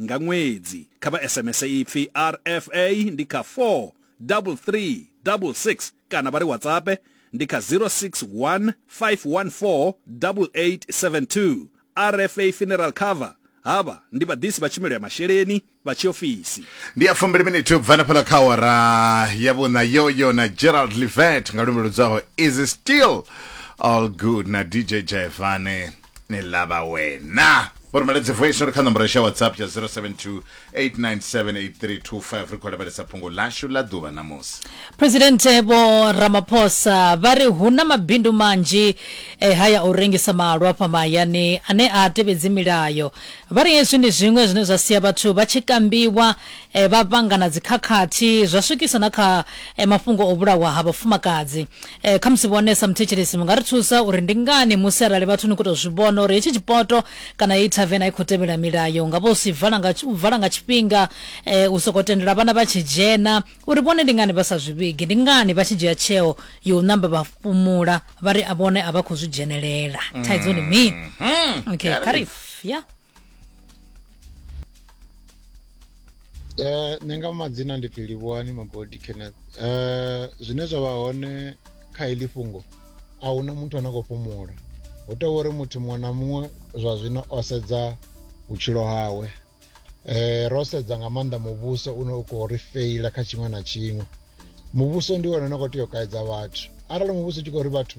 nga ṅwedzi kha vha sms ipfi rfa ndi kha 43366 kana vha ri whatsapp ndi kha 061 514 8872 rfa funeral cover havha ndi vhaḓisi vha tshumelo ya masheleni vha tshiofisi ndi ya fumbili miniti u bva nafhaḽa kha awara ya vhuṋa yoyo na gerald livet nga lumbe ludzaho is it still all good na dj jaivane ni lava wena u rhumela dzivoice ri kha nomboro xa whatsapp ya 072 8978325 ri khou lavhelesa phungo lashu ḽa ḓuvha namusi presidente vho ramaphosa vha ri hu na mabindu manzhi e haya u rengisa malwa fha mahayani ane a tevhedzi milayo vha ri hezwi ndi zwiṅwe zwine zwa sia vhathu vha tshi kambiwa eh, vha vhangana dzikhakhathi zwa swikisa na kha eh, mafhungo o vhulawa ha vhafumakadzi Eh, khamusi vhone sa muthetshelesi mu nga ri thusa uri ndi ngani musi arali vhathu ni khou tou zwi vhona uri hetshi tshipoto kana heyi thaven a i khou tevhela milayo nga vha u si vala nga u vala nga tshifhinga eh, u sokou tendela vhana vha tshi dzhena uri vhone ndi ngani vha sa zwi vhigi ndi ngani vha tshi dzhia tsheo yo u namba vha fhumula vha ri a vhone a vha khou zwi dzhenelela thaidzo ndi mini okay kharif ya Eh, nṋe nga madzina ndi pfhi livhuwani magodi kenneth eh, zwine zwa vha hone kha iḽi fhungo a huna muthu ane a khou fhumula hu tea uri muthu muṅwe na muṅwe zwa zwino o sedza vhutshilo hawe eh, ro sedza nga maanḓa muvhuso une u khou ri feila kha tshiṅwe na tshiṅwe muvhuso ndi wone une khou tea u kaidza vhathu arali muvhuso u tshi khou ri vhathu